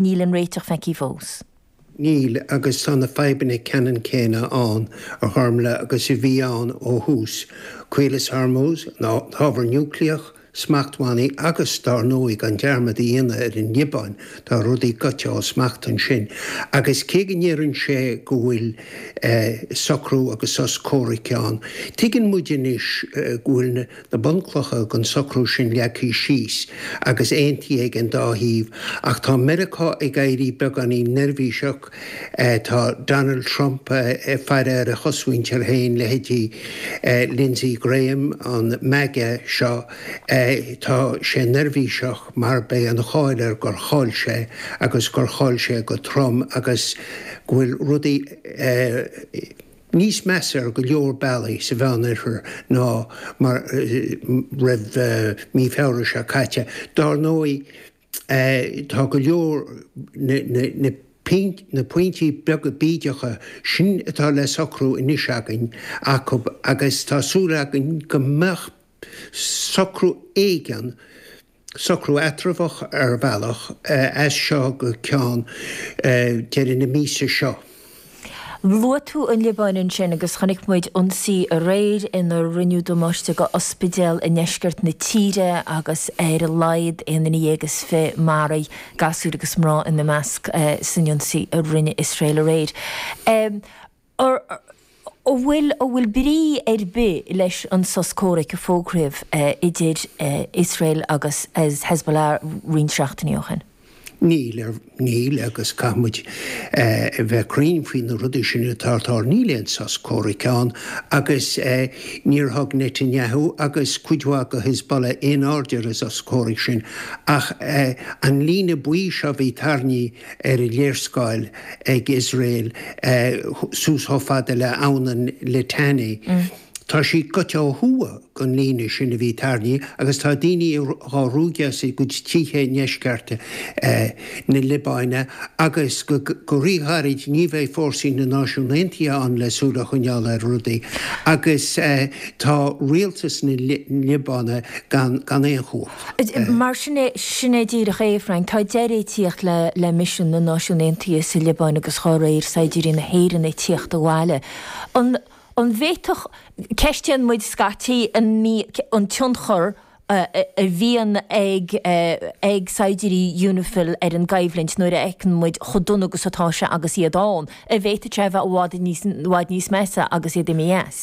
Níl an réiteach feicthe fós. Níl, agus tá na fadhbanna ceannann céanna ann a Ghormfhlaith agus a bhí ann ó thús, Caolas Hormuz, an t-ábhar núicléach, smachtbhannaí agus, dár ndóigh, gan dearmad a dhéanamh ar an Liobáin, tá rudaí goite ó smacht ansin. Agus cé go ndeireann sé go bhfuil socrú agus sos comhraic ann, tuigeann muid anois go bhfuil na bunchlocha don socrú sin leagtha síos agus aontaithe ag an dá thaobh, ach tá Meiriceá ag éirí beagáinín neirbhíseach, tá Donald Trump ag faire ar a chosmhuintir féin, leithéidí Lindsey Graham, an MAGA seo, tá sé neirbhíseach mar beidh an cháil air gur chaill sé agus gur chaill sé go trom agus go bhfuil rudaí. níos measa ar go leor bealaí sa Meánoirthear ná roimh mí Feabhra seo caite. Dár ndóigh, tá go leor na pointí beaga bídeacha sin atá le socrú anois againn acu agus tá súil againn go mbeidh socrú éigin, socrú eatramhach ar bhealach, as seo go ceann deireadh na míosa seo. Luaigh tú an Liobáin ansin agus chonaic muid ionsaí aréir inar rinneadh damáiste do ospidéal i ndeisceart na tíre agus ar a laghad aon duine dhéag is fiche maraithe, gasúir agus mná ina measc, san ionsaí a rinne Iosrael aréir. an bhfuil an bhfuil brí ar bith leis an sos comhraic a fógraíodh idir Iosrael agus Hezbollah roinnt seachtainí ó shin. Níl, níl agus caithfidh muid a bheith cruinn faoi na rudaí sin atá ag tarlú, níl aon sos comhraic ann agus níor thug Netanyahu agus cuid mhaith de Hezbollah aon aird ar an sos comhraic sin ach an líne buí seo a bhí tarraingthe ar an léarscáil ag Iosrael suas chomh fada le Abhainn an Litani. Tá sí goite ó thuaidh den líne sin a bhí tarraingthe agus tá daoine dhá ruaigeadh as a gcuid tithe i ndeisceart na Liobáine agus go ríghairid ní bheidh fórsaí na Náisiún Aontaithe ann le súil a choinneáil ar rudaí agus tá rialtas na Liobáine gan aon chumhacht. Mar sin é, sin é díreach é, a Frank, tá deireadh ag tíocht le le misean na Náisiún Aontaithe sa Liobáin agus dhá réir saighdiúirí na hÉireann ag tíocht abhaile. An an bhféadfadh, ceistíonn muid scaití an tionchar a bhíonn ag ag saighdiúirí Unifil ar an gcoimhlint nuair a fheiceann muid chomh dona agus atá sé agus iad ann, an bhféadfadh sé a bheith i bhfad níos i bhfad níos measa agus iad imithe as?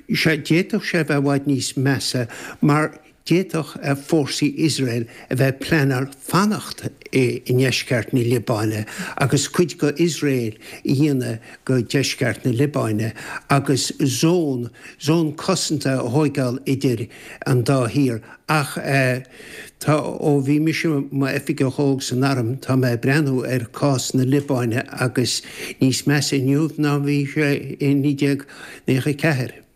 Sea, d'fhéadfadh sé a bheith i bhfad níos measa mar d'fhéadfadh fórsaí Iosrael a bheith ag pleanáil fanacht i ndeisceart na Liobáine agus cuid d'Iosrael a dhéanamh de dheisceart na Liobáine agus zón, zón cosanta a thóigeáil idir an dá thír. Ach tá, ó bhí mise i m'oifigeach óg san arm, tá mé ag breathnú ar cás na Liobáine agus tá sé níos measa inniu ná bhí sé i naoi déag ochtó ceathair.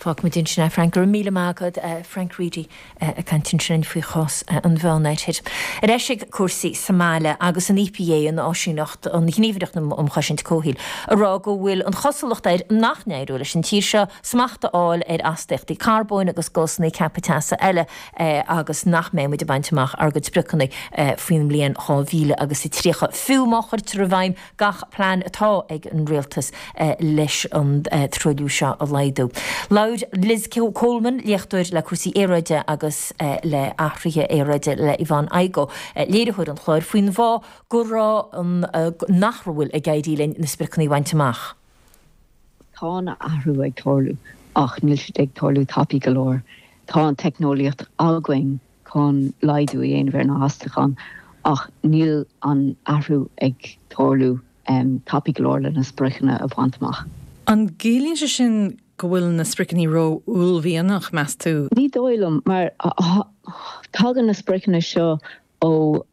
Fágfaimid ansin é, Frank. Go raibh míle maith agat, Frank Reidy, ag caint ansin faoi chás an Mheánoirthir. Ar ais ag cúrsaí sa mbaile agus an EPA, an Áisíneacht, an Ghníomhaireacht um Chosaint Comhshaoil, ag rá go bhfuil an chosúlacht air nach n-éireoidh leis an tír seo smacht a fháil ar astaíochtaí carbóin agus gásanna ceaptha teasa eile agus nach mbeidh muid ag baint amach ár gcuid spriocanna faoin mbliain 2030 fiú má chuirtear i bhfeidhm gach plean atá ag an Rialtas leis an truailliú seo a laghdú. Labhair Liz Coleman, léachtóir le cúrsaí aeráide agus le hathruithe aeráide le Yvonne Igoe, léiritheoir an chláir, faoin bhfáth go raibh, nach bhfuil ag éirí linn na spriocanna a bhaint amach. Tá an athrú ag tarlú ach níl siad ag tarlú tapaidh go leor. Tá an teicneolaíocht againn chun laghdú a dhéanamh ar na hastúcháin ach níl an athrú ag tarlú tapaidh go leor le na spriocanna a bhaint amach. An gciallaíonn sé sin go bhfuil na spriocanna ró-uaillmhianach, meas tú? Ní dóigh liom, mar tagann na spriocanna seo ó.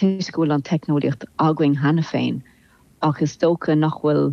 Toisc go bhfuil an teicneolaíocht againn cheana féin, ach is dócha nach bhfuil